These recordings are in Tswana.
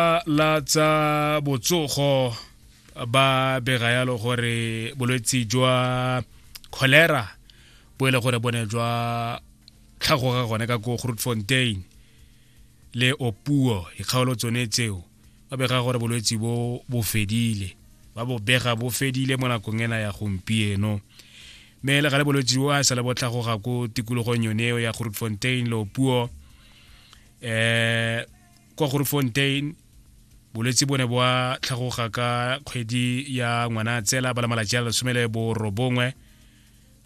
lefapha la tsa botsogo ba bega yalo gore bolwetsi jwa cholera bo e le gore bone jwa tlhagoga gone ka ko grootfontein le opuo dikgaolo tsone tseo ba bega gore bolwetsi bo bo fedile ba bo bega bo fedile mo nakong ena ya gompieno mme le gale bolwetsi bo a sale bo tlhagoga ko tikologong yone eo ya grootfontein le opuo um kwa grofontein bolwetse bo ne bwa tlhagoga ka kgwedi ya ngwana tsela ba la malatsi a lesome le borobongwe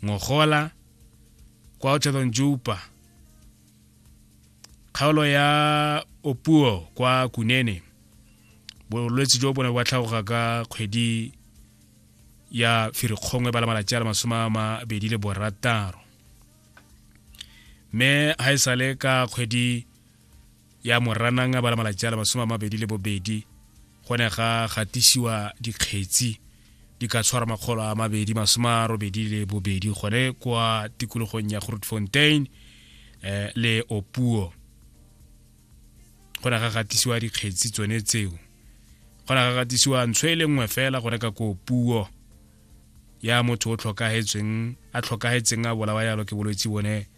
ngogola kwa otlhedong jupa kgaolo ya opuo kwa kunene bolwetse jo bo ne bwa tlhagoga ka kgwedi ya firikgongwe ba la malatsi a le masome a mabedi le borataro mme ga e sale ka kgwedi ya moranang ba la malatsi a le masome a mabedi le bobedi go ne ga gatisiwa dikgetsi di ka tshwara makgolo a mabedi masome a robedi le bobedi gone kwa tikologong ya grootfontein eh, le opuo go ne ga gatisiwa dikgetsi tsone tseo go ne ga gatisiwa ntsho e le nngwe fela go reka ko puo ya motho o tlhokagetseng a tlhokagetseng a bolawa yalo ke bolwetse bone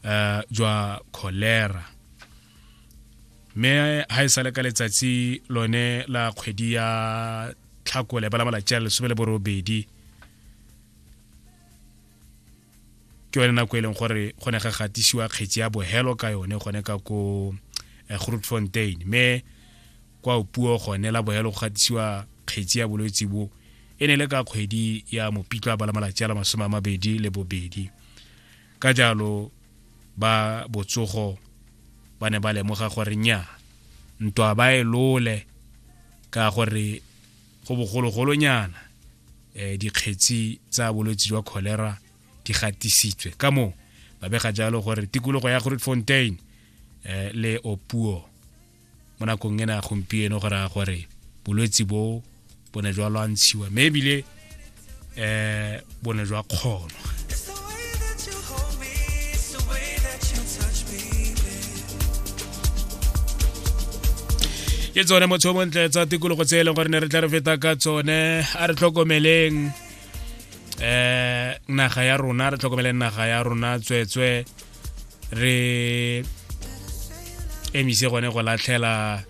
uh, jwa cholera mme ha e sale ka letsatsi lone la kgwedi ya tlhakole ba la malatsi a lesome le borobedi ke yone nako e leng gore go ne ga gatisiwa kgetsi ya bohelo ka yone gone ka ko eh, grootfontein mme kwa puo gone la bohelo go gatisiwa kgetsi ya bolwetse bo e ne le ka kgwedi ya mopitlwa ba la malatsi a la masome a mabedi le bobedi ka jalo ba botsogo ba ne ba lemoga gore nya ntwa ba e lole ka gore go bogologolonyana um dikgetsi tsa bolwetse jwa cholera di gatisitswe ka moo ba bega jalo gore tikologo ya groot fontain um le opuo mo nakong ena gompieno go raya gore bolwetsi bo bo ne jwa lwantshiwa mme ebile um bo ne jwa kgonwa ke tsone motho o montle tsa tikologo tse e leng gore ne re tla re feta ka tsone a re tlhokomeleng um naga ya rona re tlhokomeleng naga ya rona tsweetswee re emise gone go latlhela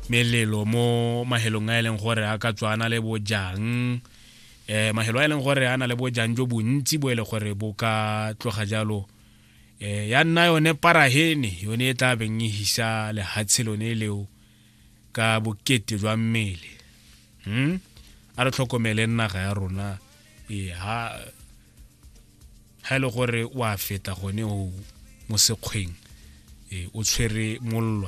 melelo mo mahelong a e leng gore a ka tswana le bojang eh mahelo a e leng gore a na le bojang jo bontsi bo e le gore bo ka tloga jalo eh ya nna yone parahene yone e tla beng e hisa lehatshe lone leo ka bokete jwa mmele hmm? a re tlhokomele naga ya rona e ha ga e le gore wa feta gone o mo sekgweng e, o tshwere mollo